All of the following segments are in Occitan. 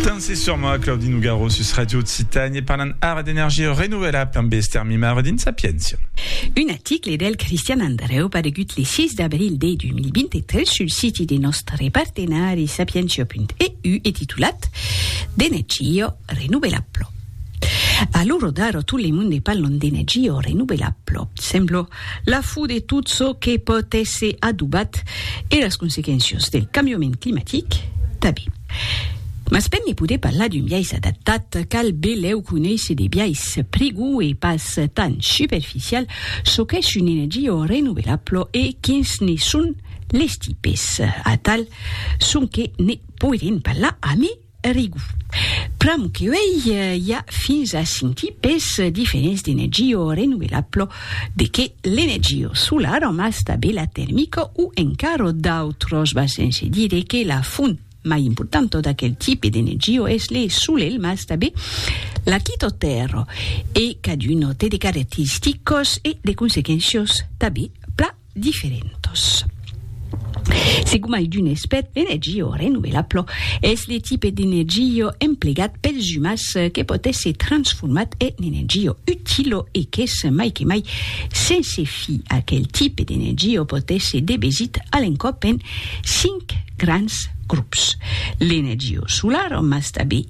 Danse sur moi, Claudi Nougaro sus Radio Occitània e parlam ara d'energia renovelabla amb Esther Mimaro dins Sapiéncia. Un article del Cristian Andreu paregut le 6 d'abril de 2023 sul siti de nòstre partenari sapientia.eu e titulat D'energia renovelabla. A l'ora d'ara tot le monde parlan d'energia renovelabla. Sembla La fo de tot çò que pòt èsser adobat e las consequéncias del cambiament climatic tanben. Mas per ne poder parlar d'un biais adaptat, cal belèu conéisser de biais prigòu e pas tan superficial çò qu'es un energia renovelabla e quins ne son les tipes. Atal sonque ne poirem parlar amé Rigu. Pr'amor que uèi i a fins a cinc tipes diferents d'energió renovelablo, de qué l'energió solara mas tabé la termica o encaro d'autros va sense dire que la font mai importanta d'aquel tipe d'energió es le solelh mas tabé la quitotèrra e caduno té de caracteristicos e de consequéncios tabé pla diferentos. Se gomai d'un espèt d'energia renovelabla, es le tipe d'energia emplegat pels umans que pòt èsser transformat en energia utila e qu'es mai que mai sense fi. Aquel tipe d'energia pòt èsser debesit a l'encòp en cinc grands grops, l'energia solara mas tanben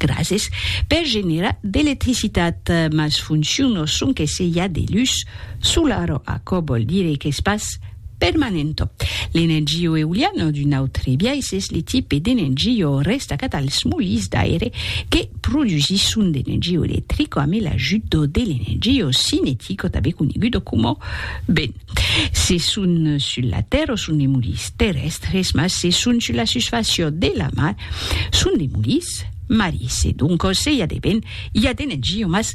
Grases per generar d'electricitat, mas fonciono sonque se i a de lus solaro, aquò vòl dire qu'es pas permanento. L'energio euliano d'un autre biais es le tipe d'energio restacat als molins d'aire que produsisson d'energio electrico ame l'ajut de l'energio cinetico tanben conegudo coma vent. Se son sul la tèrra son de mulis terrèstres, mas se son sul la susfàcia de la mar son de mulis marisi. Doncas se i a de ben, i a de negia, mas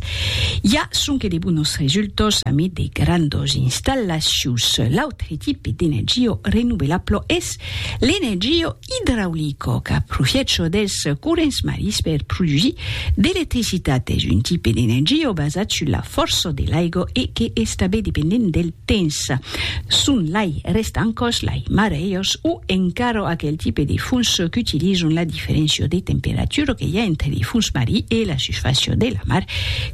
i a sonque de bonos resultas amid de grandas installacions. L'autre tipe d'energia renovelabla es L'energia idraulica qu'a profiècho dels corrents marins per produsir d'electricitat es un tipe d'energia basat sus la fòrça de l'aiga e que es tanben dependent del temps. Son lai restancas, lai marèias o encara aquel tipe de fons qu'utilizan la diferéncia de temperatura que i a entre de fons marin e la susfàcia de la mar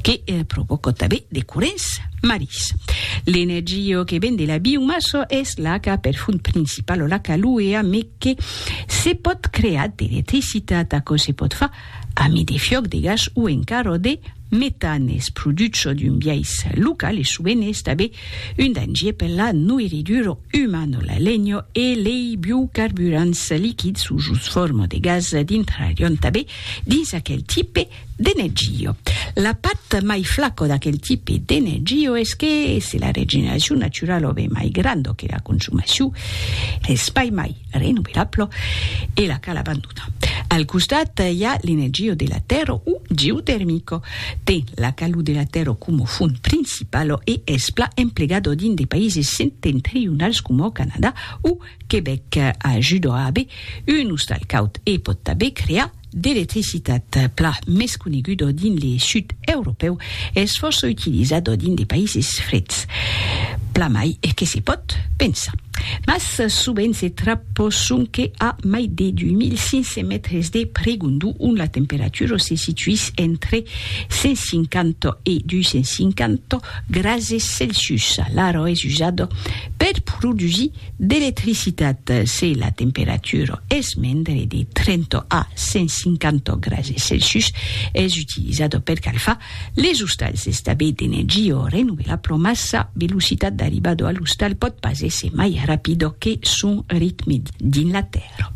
que provòca tanben de corrents. Marís. L'energia que ven de la biomassa es l'aca per font principala, l'aca luea, me que se pòt crear d'electricitat. Aquò se pòt far amid de fiòc de gas o encara de metan. Es produch çò d'un biais local e sovent es tanben un dangier per la noirridura umana. La lenha e lei biocarburants liquids o jos forma de gas dintrarián tanben dins aquel tipe D'energio. La pat mai flaco d'aquel tipe d'energio es que se la regeneracion naturalo be mai grando que la consumacion es pai mai renovelablo e la cal abandonar. Al costat i a l'energio de la tèrra o geotermico. Ten la calor de la tèrra coma font principalo e es pla emplegado dins de païses septentrionals coma au Canadà o Quebec. Ajuda a aver un ostal caud e pòt tanben crear d'electricitat plan mès conegudo dins le sud europèu es fòrça utilizado dins de païses freds, plan mai que se pòt pensar. Mas sovent se trappo sonque a mai de 2500 mètres de pregondu ont la temperatura se situís entre 150 e 250 grases Celsius. L'aro es usado per produsir D'electricitat se la temperatura es mendre de 30 a 150 grase Celsius, es utilizada per calfar les ostals. Estabé d'energia o renovelar pro mas sa velocitat d'arribada a l'ostal pòt pas èsser mai rapida que son ritme dins la tèrra.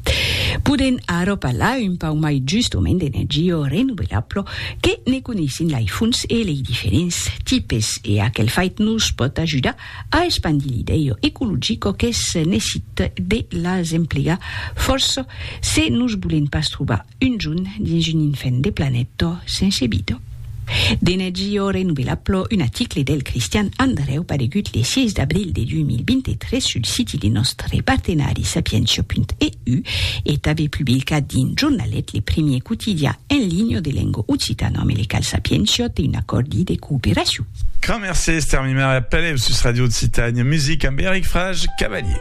Podèm ara parlar un pauc mai justament d'energia renovelar pro que ne coneissin lei fonts e lei diferents tipes e aquel fait nos pòt ajudar A espandir l'idèu ecologico qu'es nesit de las emplegar fòrça se nos bolen pas trobar un jon dins un infèn de planèta sense vida. D'energia renovelabla, un aticle del Cristian Andrèu paregut le 6 d'abril de 2023 sul siti de nòstre partenari Sapientia.eu e tanbe publicat dins Jornalet, le primier quotidian en linha de lenga occitana-americal Sapientia te un acòrdi de cooperacion. Grand merci Esther Mimer e apelèu sus Radio Occitània Music amb Eric Frage Cavalier.